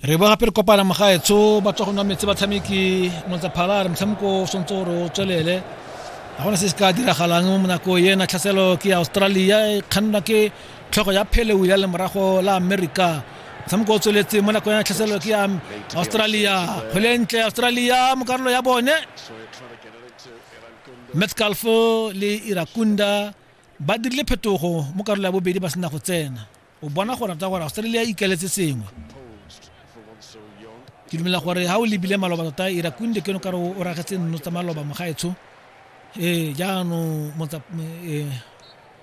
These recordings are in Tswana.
re ba gape re kopana mogaetsho ba tswa go nwa metsi batshameki motsaphala re motshameko o swantse gore o tswelele ga gona se se ka diragalang mo nako ena tlhaselo ke ya australia e kgannwa ke tlhogo ya pheleu ya lemorago la america motshameko o tsweletseng mo nako ena tlhaselo ke ya australia kgwele e ntle australia mo karolo ya bone metscalfo le irakunda ba dirile phetogo mo karolo ya bobedi ba sena go tsena o bona go rata gore australia e ikaletse sengwe ke dumela gore ga o lebile maloba tota e rakunde keno kare o ragetse nno tsa maloba mogaetsho ee jaanong e,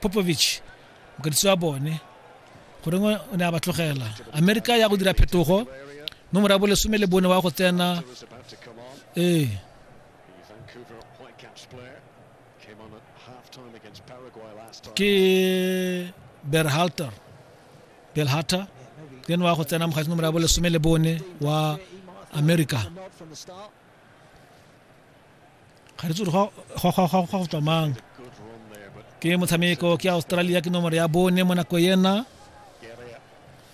popovich mokadisi wa bone goreng o ne a ba tlogela amerika ya go dira phetogo nomoro ya bolesome le bone wa go tsena ee ke berhalter belhata ke wa go tsena mogatsi nomoro ya bolesome le bone wa america ga re tsore go tswa mang ke motshameko ke australia ke nomoro ya bone mo nako ena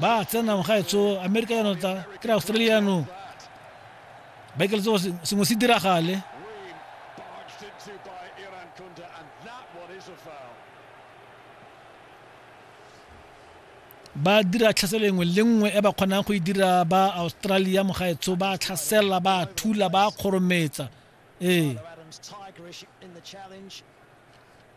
ba tsena mo gaetso amerika yano ta kry australia yanong ba ikele tsogo sengwe se diragale ba dira tlhaselo engwe le nngwe e ba kgonang go e dira ba australia mo gaetsho ba tlhasela ba thula ba kgorometsa ee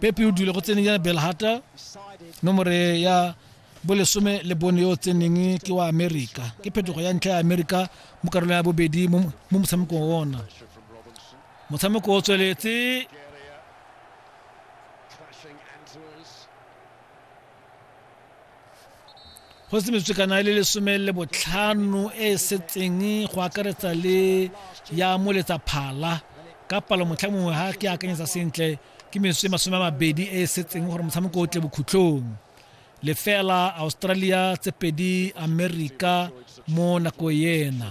pepe o dule go tseneng ya belhata nomore ya bolesome le bone yo o tseneng ke wa amerika ke phetogo ya ntlha ya amerika mo karolong ya bobedi mo motshamekong ona motshameko o tsweletse go se metswekana e le lesome le botlhano e e setseng go akaretsa le ya moletsa phala ka palo motlha mongwe ga ke akanyetsa sentle ke metswe masome a mabedi e e setseng gore motshameko o tle bokhutlhong lefela australia tse pedi america mo nako ena